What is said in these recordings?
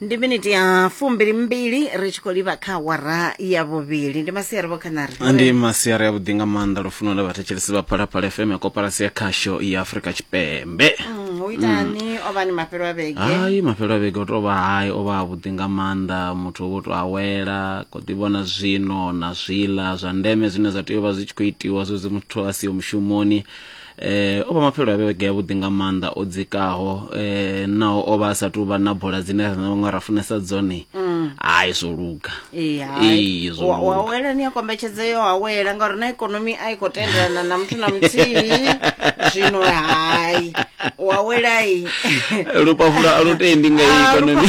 ndi miniti ya fumbili mbili ri tshi khou livha kha awara ya vhuvhili ndi masiari vho khanari ndi masiari ya vhuḓi nga maanḓa lufuno la vhathetshelesi vha phalaphala fm ya koparasi ya khasho ya afurika tshipembe Mm, hu itani o vha ni mafhelo a vhege hayi mafhelo a vhege o tou vha hayi o vha avhuḓi nga maanḓa muthu o vho tou awela ko ḓi vhona zwino na zwiḽa zwa ndeme zwine zwa tea u vha zwi tshi khou itiwa zwezwi muthu a siho mushumoni eh o vha mafhelo a vhege ya vhuḓi nga maanḓa o dzikaho eh naho o vha a sa tou vha na bola dzine ra na vhaṅwe ra funesa dzone mm. hai zwo luga ee hai zwo luga wa wela ni a kombetshedza yo awela ngauri na ikonomi a i khou tendelana na muthu na muthihi zwino hai wa wela i lupafula a lu tendi nga ah, ikonomi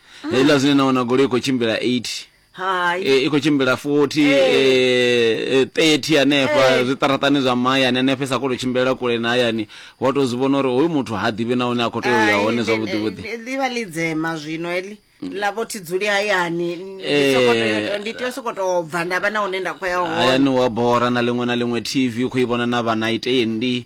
heiḽa zwine na wana goloi i khou tshimbila 8 hai e, i khou tshimbila 40 e, e, 30 hanefha Eh. zwiṱaraṱani zwa mahayani hanefha i sa khou tou tshimbilela kule na hayani wa tou zwi vhona uri hoyu muthu ha ḓivhi na hune a khou tea u ya Hai, hone ndi- zwavhuḓivhuḓi ndi- ḽivha ḽi dzema zwino heḽi ḽa vho thi dzuli hayani ndi Eh. sokou tea- ndi tea u sokou tou bva nda vha na hune nda khou ya hone hayani wa bora na ḽiṅwe na ḽiṅwe tv u khou i vhona na vhana itendi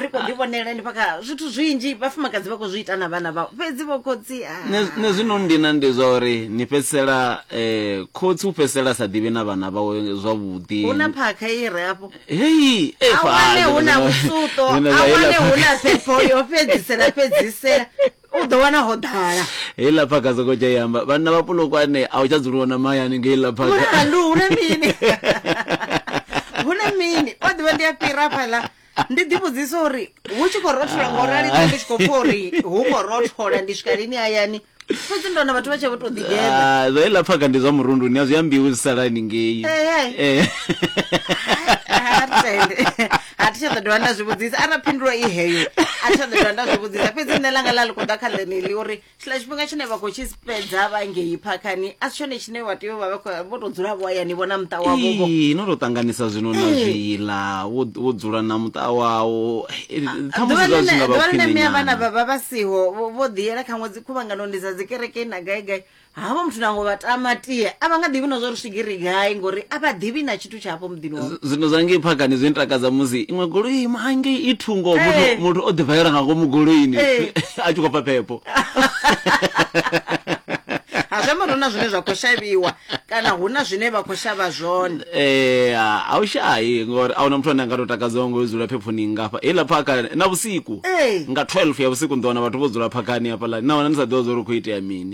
ri kho ḓi vhonela ndi paka zwithu zwinzhi vhafumakadzi vha khou zwi ita na vhana vhao fhedzi vho khotsi ah. Ne- ne zwino ndina ndi zwa uri ni fhedzisela um khotsi u fhedzisela sa ḓivhi na vhana vhawe zwavhuḓi hu na phakha i re afho hei eh, a fa- wane hu na zwino- vhusuto zwino a zwa wane hela hu na phakha. phepho yo fhedzisela fhedzisela u ḓo wana ho ḓala heiḽa phaka soko tsha yamba vhanna vha pulukwane a u tsha dzuliwa na mahayani nga heiḽa phakaandu hune mini hune mini o ḓivha ndi a fhira fhaḽa ndi ḓi vhudzisa uri hu tshi khou rothola ngo rali ndi tshi khou pfha uri hu khou rothola ndi swika lini hayani fhedzi ndo na vhathu vha tshe vho to ḓigela ah, zwa iḽa phaka ndi zwa murundu ni a zwi ambiwi zwi salani ngei eh, eh. eh. ha thi tsha ḓo dovha nda zwi vhudzisa arali phindulo i heyo a thi tsha ḓo dovha nda zwi vhudzisa fhedzi nṋe langa ḽa ḽi khou ḓa kha ḽeneḽi uri tshiḽa tshifhinga tshine vha khou tshi fhedza vha ngei phakhani a si tshone tshine vha tea u vha vha khou- vho tou dzula vho hayani vho na muṱa wavho Ii, no tou ṱanganisa zwino na Ee. zwiḽa wo wo dzula na muṱa wawo Eh, khamusi zwa zwi nga vha ḓuvha ḽine khwine mme a vhana nyana vha vha vha siho vho- vho ḓiyela kha ṅwedzi khuvhanganoni dza dzi kerekeni na gai gai havho muthu nango vha tama tie a vha nga ḓivhi na zwa uri swigiri gai ngori a vha ḓivhi na tshithu tsha hafho muḓini wavho Z- zwino zwa ngei phakani zwi ntakadza musi iṅwe goloi ima hangei i thungo Eh. muthu- muthu o ḓivhaela nga ngomu goloini Eh. a tshi khou pfa phepho ha zwi amba uri hu na zwine zwa khou shavhiwa kana hu na zwine vha khou shavha zwone Eh, a u shayi ngori a huna muthu ane a nga to takadzaho ngo dzula phephoni ngafha heiḽa phaka na vhusiku Eh. nga 12 ya vhusiku ni ḓo wana vhathu vho dzula phakani hafhaḽani nahone ni sa ḓivha zwa uri hu khou itea mini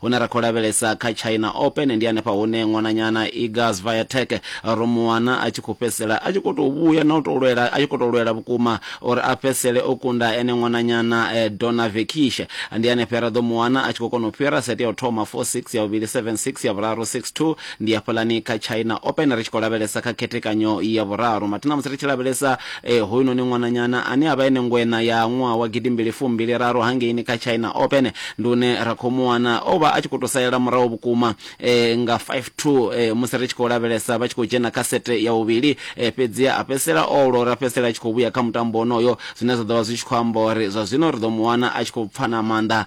Hune ra khou lavhelesa kha China Open ndi hanefha hune ṅwananyana Iga Swiatek ro mu wana a tshi khou fhedzisela a tshi khou tou vhuya na u tou lwela a tshi khou tou lwela vhukuma uri a fhedzisele o kunda ene ṅwananyana eh, Donna Vekish. Ndi hanefha ra ḓo mu wana a tshi khou kona u fhira sete ya u thoma 4-6 ya vhuvhili 7-6 ya vhuraru 6-2 ndi hafhaḽani kha china open ri tshi khou lavhelesa kha khethekanyo ya vhuraru mathi na musi ri tshi lavhelesa eh, hoyunoni ṅwananyana ane a vha ene ngwena ya ṅwaha wa gidimbili fumbili raru hangeini kha china open ndi une ra khou mu wana o vha a tshi khou tou salela murahu vhukuma eh, nga 52 eh, musi ri tshi khou lavhelesa vha tshi khou dzhena kha sete ya vhuvhili eh, fhedzi a fhedzisela o lora fhedzisela a tshi khou vhuya kha mutambo onoyo zwine zwa ḓo vha zwi tshi khou amba uri zwa zwino ri ḓo mu wana a tshi khou pfana maanḓa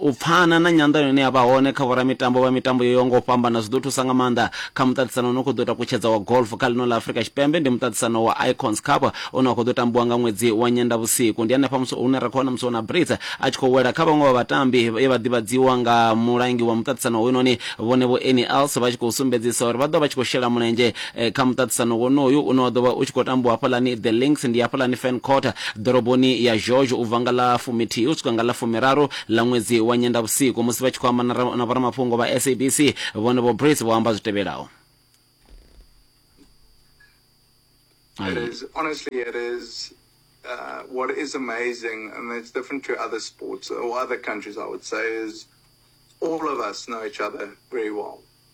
u pfana na nyanḓano ine ya vha hone kha vhoramitambo vha mitambo yo yaho nga u fhambana zwi ḓo thusa nga maanḓa kha muṱaṱisano une khou ḓo ita kutshedza wa golf kha ḽino ḽa afurika tshipembe ndi muṱaṱisano wa icons cup une wa khou ḓo tambiwa nga ṅwedzi wa nyendavhusiku ndi hanefha musi hune ra khou wana musi wona brits a tshi khou wela kha vhaṅwe vha vhatambi ye vha ḓivhadziwa nga mulangi wa muṱaṱisano hoyunoni vhone vho eni els vha tshi khou sumbedzisa uri vha ḓo vha tshi khou shela mulenzhe eh, kha muṱaṱisano wonoyu une wa ḓo vha u tshi khou tambiwa hafhaḽani the links ndi hafhaḽani fan quarter ḓoroboni ya george u bva nga ḽa fumithihi u swika nga ḽa fumiraru ḽa ṅwedzi wa nyendavhusiku musi vha tshi khou amba na ra- na vhoramafhungo vha sabc vhone vho brace vho amba zwi tevhelaho It is honestly, it is uh, what is amazing, and it's different to other sports or other countries. I would say is all of us know each other very well.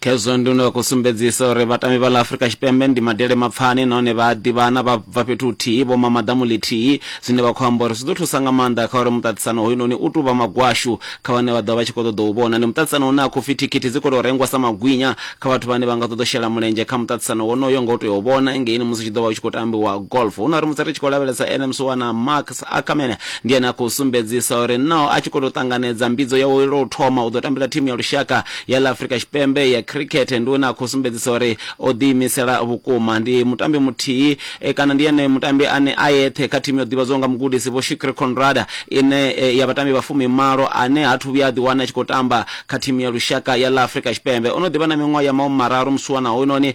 khezwo ndi no khou sumbedzisa uri vhatambi vha ḽa afurika tshipembe ndi madele mapfani nahone vha a ḓivhana vha bva fhethu huthihi vho mama ḓamu ḽithihi zwine vha khou amba uri zwi ḓo thusa nga maanḓa kha uri muṱaṱisano hoyunoni u tou vha magwashu kha vhane vha ḓo vha tshi khou ṱoḓa u vhona ndi muṱaṱisano une a khou pfi thikhithi dzi khou tou rengwa sa magwinya kha vhathu vhane vha nga ṱoḓa u shela mulenzhe kha muṱaṱisano wonoyo nga u tea u vhona ngeini musi tshi ḓo vha u tshi khou tambiwa golf hu na uri musi ri tshi khou lavhelesa nms wana mark Ackerman ndi ene a khou sumbedzisa uri no a tshi khou tou ṱanganedza mbidzo yawe lwa u thoma u ḓo tambela thimu ya lushaka ya ḽa Afrika Tshipembe ya khirikhethe ndi hune a khou sumbedzisa uri o ḓiimisela vhukuma. Ndi mutambi muthihi kana ndi ene mutambi ane a eṱhe kha thimu yo ḓivhadzwaho nga mugudisi Vho Shukri Conrada ine ya vhatambi vha fumimalo ane ha thu vhuya a ḓiwana a tshi khou tamba kha thimu ya lushaka ya ḽa Afrika Tshipembe. O no ḓi vha na miṅwaha ya mahumi mararu musiwana hoyunoni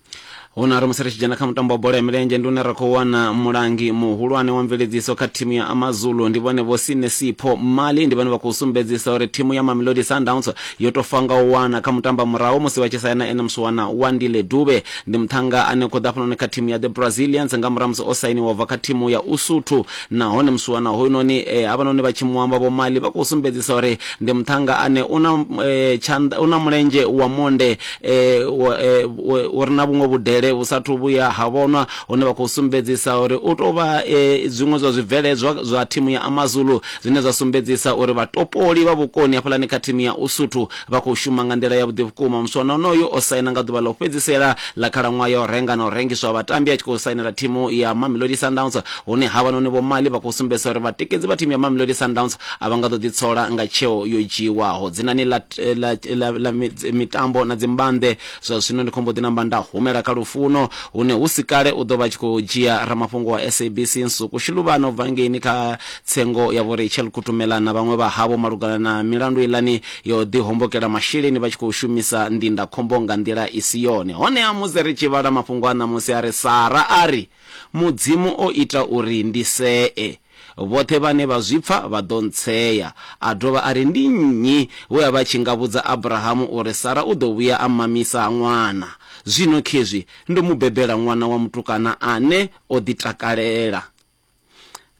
huno ri musi ri tshi dzhena kha mutambo wa bola ya milenzhe ndi une ra khou wana mulangi muhulwane wa mveledziso kha thimu ya amazulu ndi vhone vho sinesipho mali ndi vhone vha khou sumbedzisa uri thimu ya mamelodi sundowns yo to fanga u wana kha mutamba murahu musi vha tshi saina ene musiwana wa ndile dube ndi muthanga ane khou ḓa hafhanoni kha thimu ya the brazilians nga murahu musi o sainiwa bva kha thimu ya usuthu Nahone musiwana hoyunoni e havhanoni vha tshi mu amba Vho Mali vha khou sumbedzisa uri ndi muṱhannga ane u na tshanḓa, u na mulenzhe wa monde e u re na vhuṅwe vhudele vhu sathu vhuya ha vhonwa, hune vha khou sumbedzisa uri u tou vha e zwiṅwe zwa zwibveledzwa zwa thimu ya AmaZulu zwine zwa sumbedzisa uri vhatopoli vha vhukoni hafhaḽani kha thimu ya Usuthu vha khou shuma nga nḓila yavhuḓi vhukuma. Musiwana onoyu o saina nga ḓuvha ḽa u fhedzisela ḽa khalaṅwaha ya u renga na u rengiswa ha vhatambi a tshi khou sainela thimu ya Mamelodi Sundowns, hune havhanoni Vho Mali vha khou sumbedzisa uri vhatikedzi vha thimu ya Mamelodi Sundowns a vha nga ḓo ḓitsola nga tsheo yo dzhiiwaho. Dzinani ḽa ḽa ḽa ḽa mitambo na dzimbambe, zwa zwino ndi khou mbo ḓi namba nda humela kha Lufuno hune hu si kale u ḓo vha a tshi khou dzhia ramafhungo wa SABC Nsuku Shiluvhana u bva ngeini kha tsengo ya Vho Rachel Kutumela na vhaṅwe vha havho malugana na milandu iḽani yo ḓi hombokela masheleni vha tshi khou shumisa ndindakhombo nga nḓila i si yone. Honeha musi ri tshi vhala mafhungo a ṋamusi a ri, Sara a ri, Mudzimu o ita uri ndi see. Vhoṱhe vhane vha zwi pfa vha ḓo ntsea. A dovha a ri, Ndi nnyi we a vha tshi nga vhudza Abrahamu uri Sara u ḓo vhuya a mmamisa ṅwana? Zwino khezwi ndo mu bebela ṅwana wa mutukana ane o ḓitakalela.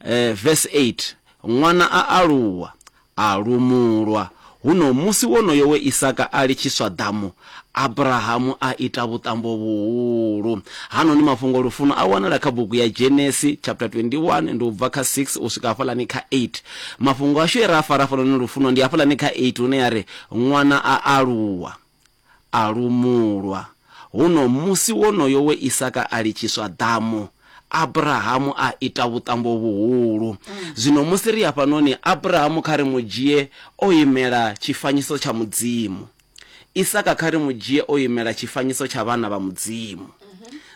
eh, verse 8 ṅwana a aluwa a lumulwa huno musi wonoyo we isaka a litshiswa ḓamu abrahamu a ita vhuṱambo vhuhulu hanoni mafhungo lufuno a wanala kha bugu ya genesi chapter 21 ndi u bva kha 6 u swika hafhalani kha 8 mafhungo ashu e ra a fara hafhanoni lufuno ndi hafhalani kha 8 hune ya ri ṅwana a aluwa A lumulwa. Huno musi wonoyo we Isaka a litshiswa ḓamu, Abrahamu a ita vhuṱambo vhuhulu. Zwino musi ri hafhanoni, Abrahamu kha ri mu dzhie o imela tshifanyiso tsha Mudzimu. Isaka kha ri mu dzhie o imela tshifanyiso tsha vhana vha Mudzimu.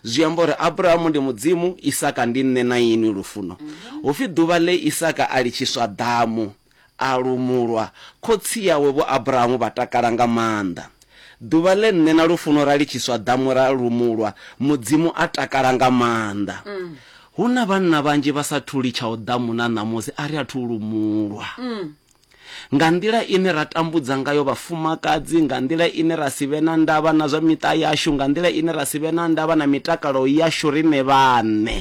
Zwi amba uri Abrahamu ndi Mudzimu, Isaka ndi nṋe na inwi, lufuno. Hu pfi ḓuvha ḽe Isaka a litshiswa ḓamu. A lumulwa, khotsi yawe Vho Abrahamu vha takala nga maanḓa. Ḓuvha ḽe nṋe na Lufuno ra litshiswa ḓamu ra lumulwa, Mudzimu a takala nga maanḓa. Hu na vhanna vhanzhi vha sa thu litshaho ḓamu na ṋamusi a ri athu u lumulwa. Nga nḓila ine ra tambudza ngayo vhafumakadzi, nga nḓila ine ra si vhe na ndavha na zwa miṱa yashu, nga nḓila ine ra si vhe na ndavha na mitakalo yashu riṋe vhaṋe.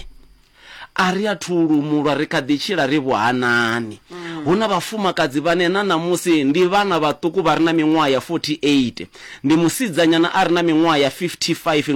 A ri athu u lumulwa, ri kha ḓi tshila ri vhuhanani. Hu na vhafumakadzi vhane na ṋamusi ndi vhana vhaṱuku vha re na miṅwaha ya 48. Ndi musidzanyana a re na miṅwaha ya 55 nga.